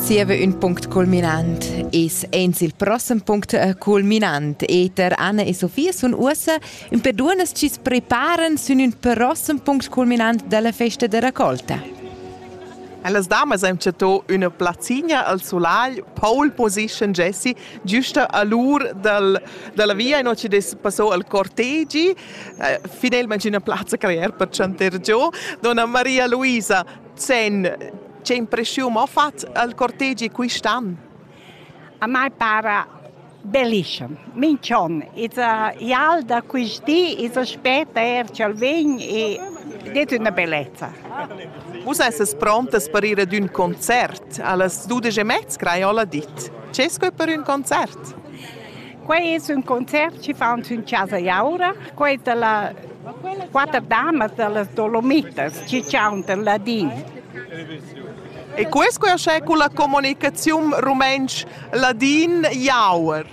Zieva ün punct culminant es aint il prossem punct eh, culminant. Eter Anna e Sofia sun uossa ün per duonnas chi's preparan sün ün prossem punct culminant della festa de raccolta. Las damas han chattò üna plazzina al solagl, pole position Jessie, giusta a l'ur dal, dalla via e non ci des passò al cortegi, eh, finalmente una plazza creare per chanter giù, donna Maria Luisa. Sen, che impreschiun ho fat al cortegi quist'an? A mai para bellissimo. Mincion, iz ial da quist di, iz aspetta er ch'el vegn e det üna bellezza. Vus esses prontas per ir ad ün concert. Allas dudesch e mezza crai ho la dit. Che sco per ün concert? Quei es ün concert chi faun sün Chasa Jaura. Quei dalla quatter damas dallas Dolomitas chi chauntan ladin. E quest querschè culla comunicaziun rumentsch-ladin Jauer.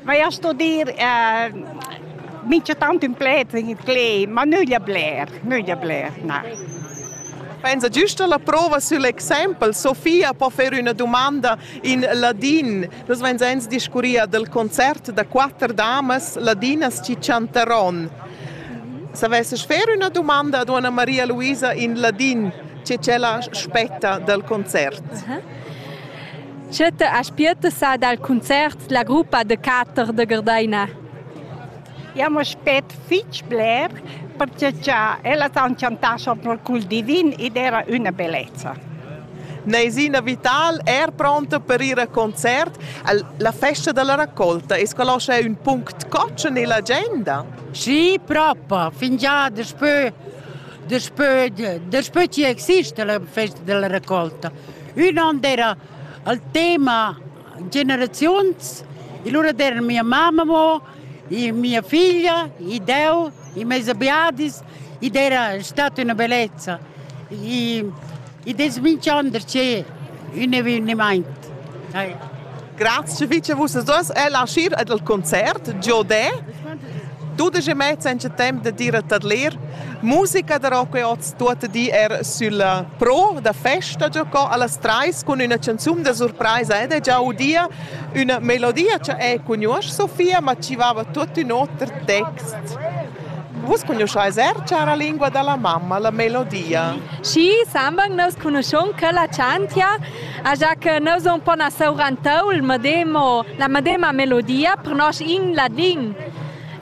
Vai a studir eh, mincha tant ün pled in itlé, ma nüglia bler, nüglia bler, na. Pensa, giusta la prova sül exempel. Sofia po fer üna dumanda In ladin. Nus vein sens discurria del concert da quatter damas ladinas chi chantaron. S'avesses fer üna dumanda ad Anna Maria Luisa in ladin, che ch'ella spetta del concert. Tschetta aspietta sa dal concert la gruppa de quatter de Gardaina. Jau m'aspect fitg bler pertge cha ellas han chantà sopra cul divin ed era üna bellezza. Naisina Vital er pronta per ir a concert. La festa della raccolta es quella uschè ün punct cotschen nell'agenda? Sì, propa, fingià daspö daspö daspö chi exista la festa della raccolta. Ün on era il tema generaziuns e lura era mia mamma mo e mia figlia, e Deu, e meis abiadis, ed era stata una bellezza. E, ed es minchander che un eveniment. Grazie fece vus as el ascir ed al concert Giodè. Dudisch e mezz en temp de dire tadlir. Musica da rock e oz tuot di er sulla pro da festa giocò allas treis cun üna canzun da surpresa ed è già udia Üna melodia cha eu cugnuosch, Sofia, ma chi vaiva tuot ün oter text. Vus cognuscais er, chara lingua da la mamma, la melodia? Sì, sembang nos conuschun che la chantia, già che nus un po na sourantau il medemo, la medema melodia per nos in ladin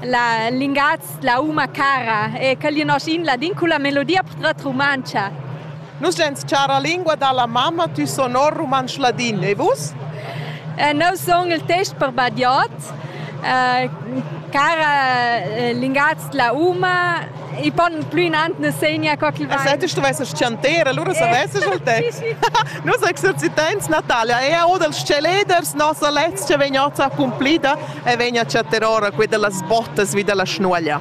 la lingaz la uma cara e che li nos in ladin con la melodia portret rumantscha. Nus en chara lingua dalla mamma, tu sonor rumantsch ladin, e vus? Eh, neu song il test per badiot, eh, cara eh, lingaz la uma, i pon plü inant ne segna co che va. Se tu stuvesses chanter, allora savesses il te. Nus exercitants Natalia è o dels celeders nossa letz che vegn ossa accumplida e vegn a chattar ora qui dellas bottas vi della schnuaglia.